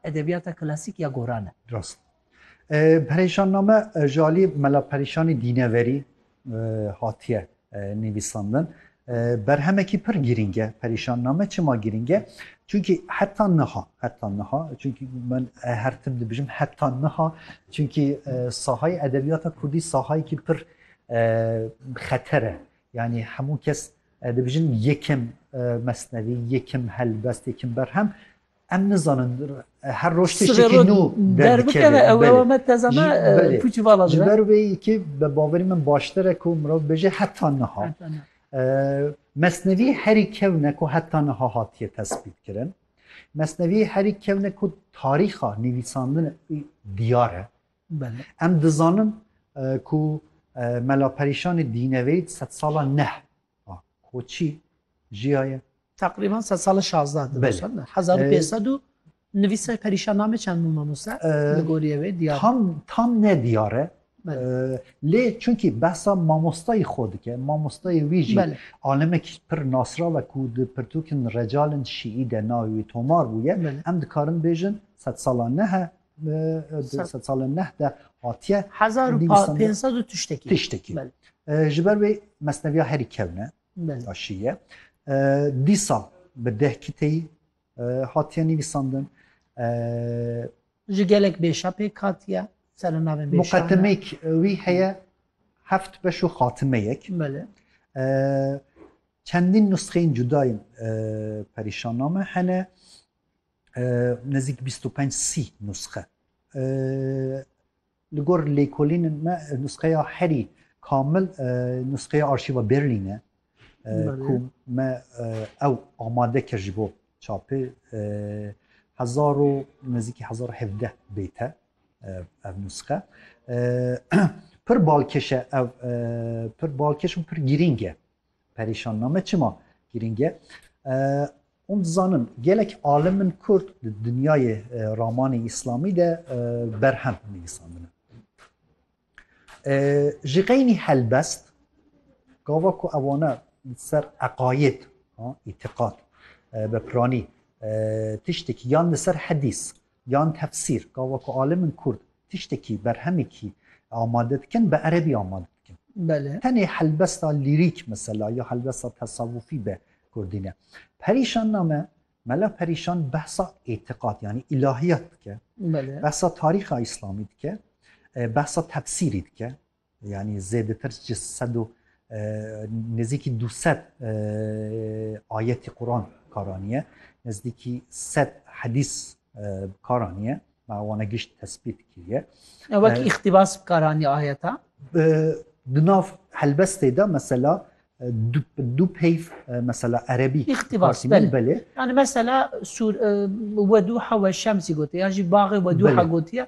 Edebiyata klasîk ya goran e. Rast. Perêşanname ji aliyê Mela Perîşanî Dîneverî hatiye nivîsandin. Berhemekî pir girîng e perîşanname. Çima girîng e? Çunkî heta niha, heta niha, çunkî min her tim dibijim heta niha, çunkî sahayê edebiyata kurdî sahayekî pir xeter e. Yanî hemû kes dibijin yekim mesnevî, yekim helbest, yekim berhem Em nizanin her roj tiştekî nû derbikeve ew ew me teza me pûçî vala ji ber wê yekî bi baverî min baştir e ku mirov bêje heta niha mesnevî herî kewne ku heta niha hatiye tespît kirin mesnevî herî kewne ku tarîxa nivîsandin diyar e em dizanin ku mela perîşanê dîneveyî sed sala neh Ah, Koçî jiyaye? Teqrîban sed sal e şazda di Belê. sal ne. Hezar û pênc sed û nivîse perîşan name çend bû mamoste? Ee, Li gorî ev ê diyar. Tam tam ne diyar e. Belê. Ee, Lê çunkî behsa mamostayî xwe dike. Mamostayê wî jî Belê. alimekî pir nasrav e ku di pirtûkên recalên şîî de navê wî tomar bûye. Belê. Em dikarin bêjin sed sala ne he di salên neh de hatiye hezar û pênc sed û tiştekî tiştekî ji ber wê mesneviya herî kevne daşiye dîsa bi deh kiteyî hatiye nivîsandin ji gelek bêşa pêk hatiye sere navên muqeddimêk wî heye heft beş û xatimeyek çendîn nusxeyên cudayên perîşanname hene Nezik bîst û penc sî nusxe li gor lêkolînên me nusxeya herî kamil nusxeya arşîva Berlîn e ku me ew amade kir ji bo çapê hezar û nezîkî hezar û hevdeh bête ev nusxe pir balkêş e ev pir balkêş û pir girîng e Perîşanname çima girîng e? Hûn dizanin gelek alimin kurd di dinyayê ramanê îslamî de berhem nivîsandine. Ji qeynî helbest gava ku ewane li ser eqayêd îtîqat be piranî tiştekî yan li ser hedîs Yan tefsîr, gava ku alimên kurd tiştekî, berhemekî amade dikin, bi erebî amade dikin. Tenê helbesta lîrîk mesela ya helbesta tesawufî bi kurdî ne. Perîşan name, Mela Perîşan behsa îtiqad yanî îlahiyat dike, behsa tarîxa îslamî dike, behsa tefsîrî dike, Yanî zêdetir ji sed û nêzîkî du sed ayetî Quran kar aniye, nezdîkî sed hedîs bi kar aniye, ma wana gişt tesbît kiriye. Wek îxtîbas bi kar aniye ayeta? Di nav helbestê de mesela du peyv mesela erebî îxtîbas belê. Yani mesela sur weduha we şemsî gotiye ya jî baxê weduha gotiye